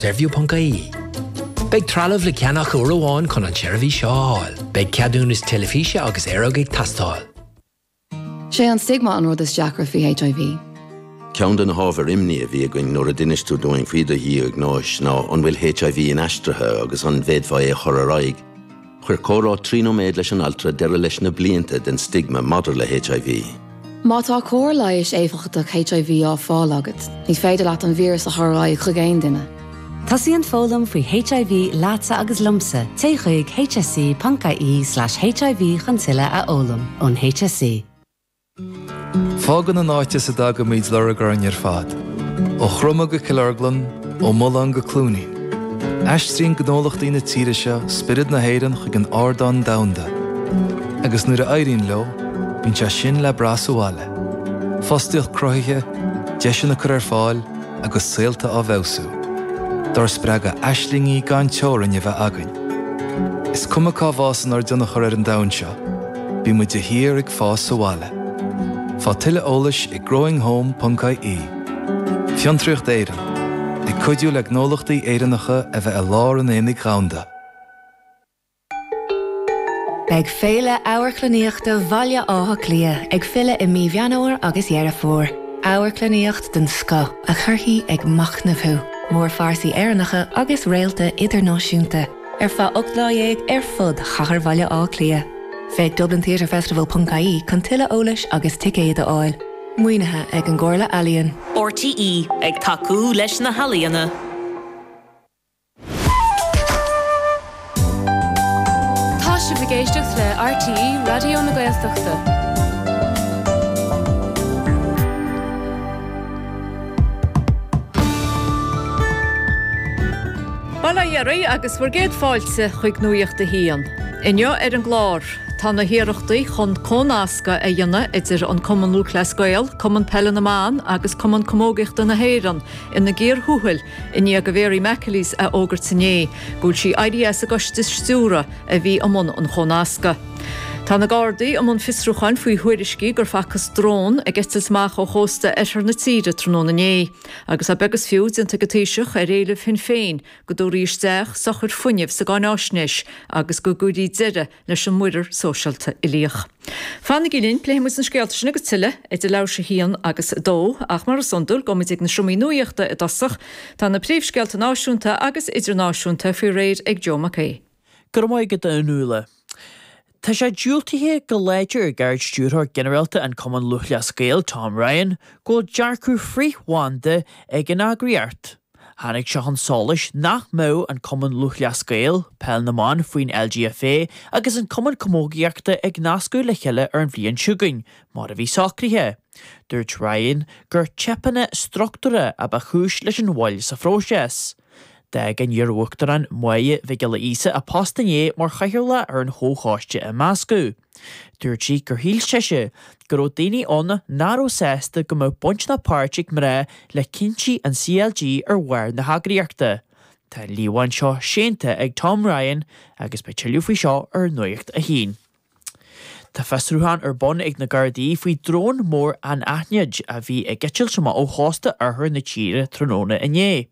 Saorview.ie. Beidh trealamh le ceannach uair amháin chun an tseirbhís seo a fháil. Beidh ceadúnas teilifíse agus aeráide ag teastáil. Sé an stigma an rud is deacra faoi HIV. Ceann de na hábhair imní a bhí againn nuair a d'inis tú dúinn faoi do dhiagnóis ná an bhfuil HIV inaistrithe agus an bhféadfá é a chur ar aghaidh. Chuir comhrá trí nóiméad leis an altra deireadh leis na blianta den stigma maidir le HIV. Má tá cóir leighis éifeachtach HIV á fáil agat, ní féidir leat an víreas a chur ar aghaidh chuig aon duine. Tosaíonn foghlaim faoi HIV leatsa agus liomsa, téigh chuig hse.ie/hiv chun tuilleadh a fhoghlaim ón HSE. Fágann an áit as a dtagaimid lorg orainn ar fad, ó Chromadh go Cill Orglan, ó Mulán go Cluainín. Aistríonn gnólachtaí na tíre seo spiorad na hÉireann chuig an ardán domhanda, agus nuair a éiríonn leo, bíonn sé sin le brath sa bhaile, fostaíocht cruthaithe, deiseanna á gcur ar fáil agus saolta á bhfeabhsú, dár spreagadh aislingí gan teorainn a bheith againn. Is cuma cá bhfásann ár dtionchar ar an domhan seo, Bíonn muid de shíor ag fás sa bhaile. Faigh tuilleadh eolais ag growinghome.ie Fiontraíocht Éireann, ag cuidiú le gnólachtaí Éireannacha a bheith i lár an aonaigh dhomhanda. Beidh Féile Amharclannaíochta Bhaile Átha Cliath ag filleadh i mí Mheán Fhómhair agus Dheireadh Fómhair. Amharclannaíocht den scoth a chuirfidh ag machnamh thú, mórphearsaí Éireannacha agus réalta idirnáisiúnta. ar feadh ocht lá dhéag ar fud chathair Bhaile Átha Cliath. Féach dublintheatrefestival.ie chun tuilleadh eolais agus ticéid a fháil. Maoinithe ag an gComhairle Ealaíon. RTÉ, ag tacú leis na healaíona. Tá sibh ag éisteacht le RTÉ Raidió na Gaeltachta. Bail ó Dhia oraibh agus bhur gcéad fáilte chuig Nuacht a hAon. Inniu ar an gclár, tá na hiarrachtaí chun comhnascadh a dhéanamh idir an Cumann Lúthchleas Gael, Cumann Peile na mBan agus Cumann Camógaíochta na hÉireann ina gcíor thuathail i ndiaidh do Mhary McAleese a fhógairt inné go bhfuil sí éirithe as an gcoiste stiúrtha. a bhí i mbun an chomhnasctha. Tá na Gardaí i mbun fiosrúcháin faoi thuairiscí gur facthas drón ag eitilt amach ó chósta oirthear na tíre tráthnóna inné agus tá beag is fiú déanta ag an Taoiseach ar éileamh Shinn Féin go dtabharfaí isteach sochar fuinnimh sa gcáináisnéis agus go gcuirfí deireadh leis an Muirear Sóisialta Uilíoch. Fanaigí linn, pléifidh muid na scéalta sin agus tuilleadh idir leathuair tar éis 1 agus 2 ach mar is iondúil, gabhfaidh muid ag na seomraí nuaíochta i dtosach. Tá na príomhscéalta náisiúnta agus idirnáisiúnta faoi réir ag Joe Mac Aoidh. Go raibh maith agat, a Fhionnuala. Tá sé diúltaithe go láidir ag Ard-Stiúrthóir Ginearálta an Chumainn Lúthchleas Gael, Tom Ryan, go bhfuil dearcadh frith-bhanda ag an eagraíocht. Tháinig sé chun solais nach mbeadh an Cumann Lúthchleas Gael, Peil na mBan faoin LGFA agus an Cumann Camógaíochta ag nascadh le chéile ar an bhliain chugainn mar a bhí socraithe. Dúirt Ryan gur teipeanna struchtúrtha a ba chúis leis an mhoill sa phróiseas. D'fhág an t-iarUachtarán, Máire Mhic Giolla Íosa, a post inné mar chathaoirleach ar an chomhchoiste imeasctha. Dúirt sí gur shíl sise go raibh daoine ann nach raibh sásta go mbeadh baint ná páirt ag mná le cinntí an CLG ar bharr na heagraíochta. Tá an líomhain seo séanta ag Tom Ryan agus beidh tuilleadh faoi seo ar Nuacht a hAon. Tá fiosrúchán ar bun ag na Gardaí faoi drón mór anaithnid a bhí ag eitilt amach ó chósta oirthear na tíre tráthnóna inné.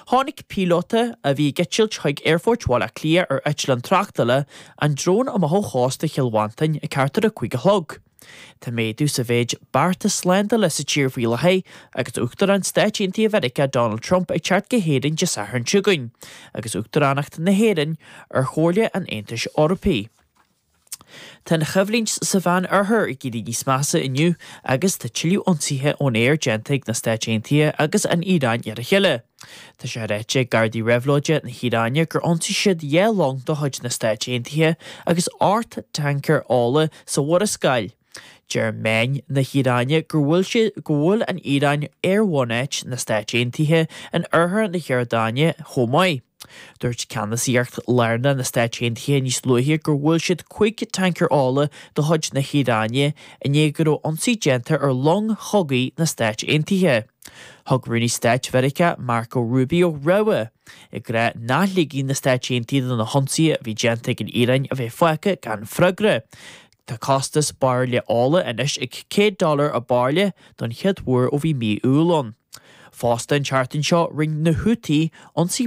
Chonaic píolóta, a bhí ag eitilt chuig Aerfort Bhaile Átha Cliath ar eitleán tráchtála, an drón amach ó chósta Chill Mhantáin ag thart ar a cúig a chlog. Tá méadú sa mhéid bearta slándála sa tír faoi láthair agus Uachtarán Stáit Aontaithe Mheiriceá Donald Trump ag teacht go hÉirinn Dé Sathairn seo chugainn agus Uachtaránacht na hÉireann ar Chomhairle an Aontais Eorpaigh. Tá an choimhlint sa Mheán Oirthear ag éirí níos measa inniu agus tá tuilleadh ionsaithe ón aer déanta ag na Stáit Aontaithe agus an Iaráin ar a chéile. Tá sé ráite ag Gardaí Réabhlóide na hIaráine gur ionsaigh siad dhá long de chuid na Stáit Aontaithe agus ocht tancaer ola sa Mhurascaill. Deir meáin na hIaráine go bhfuil gur bhuail an Iaráin aerbhunáit na Stáit Aontaithe in oirthear na hIordáine chomh maith. Dúirt ceannasaíocht lárnach na Stáit Aontaithe níos luaithe gur bhuail siad cúig tancaer ola de chuid na hIaráine i ndiaidh go raibh ionsaí déanta ar long chogaidh na Stáit Aontaithe. Thug Rúnaí Stáit Mheiriceá Marco Rubio rabhadh ag rá nach ligfidh na Stáit Aontaithe do na hionsaithe a bhí déanta ag an Iaráin a bheith fágtha gan freagra. Tá costas bairille ola anois ag 100 dollar an bairille don chéad uair ó bhí mí Iúil ann. Fosta, an tseachtain seo, rinne na Houthi ionsaí